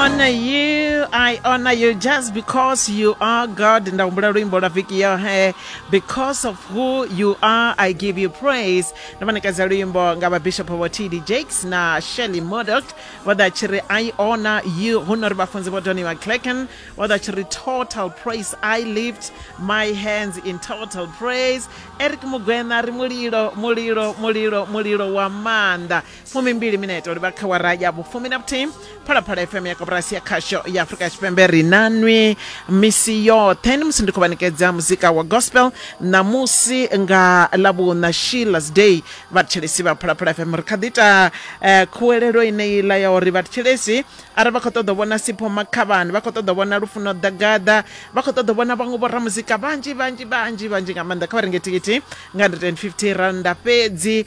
honor you i honor you just because you are god nda humbula luimbo lwa viki yohe because of who you are i give you praise ndo manekedza luimbo nga vhabishopo vho td jakes na shelly modot vho ḓa tshi ri i honor you hu no ri vhafunzi vho doniwa clacken vho ḓa tshi ri total praise i lift my hands in total praise eric mugwena ri mulilo mulilo mulilo mulilo wa maanḓa fumimbili minete uri vha kha wara ya vhufumi na vhuthihi phalaphala fm ya koporasi ya khasho ya afurika tshipembe ri nanwi misi yoṱhe ni musi ndi khou vhanekedza muzika wa gospel ṋamusi nga lavhuna shillas day vhathetshelesi vha phalaphala fm ri kha ḓi ita eh, khuwelelo ineila ya uri vhathetshelesi arali vha khou ṱoḓa u vhona sipho makhavhani vha khou ṱoḓa u vhona lufuno ḓagaḓa vha khou ṱoḓa u vhona vhaṅwe vhoramuzika vhanzhi vhanzhi vhanzhi vhanzhi nga maanḓa kha vha renge thikhithi nga 150 randa fhedzi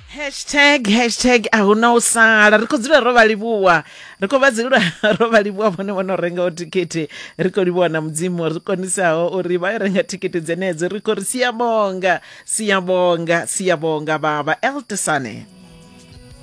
hashtag hashtag a hu na u sala ri khou dzula ro vha livhuwa ri khou vha dzula ro vha livhuwa vhone vho no rengaho thikhithi ri khou livhuwa na mudzimu ri konisaho uri vha yo renga thikhithi dzenedzo ri khou ri siyabonga siyabonga siyabonga baba eltesane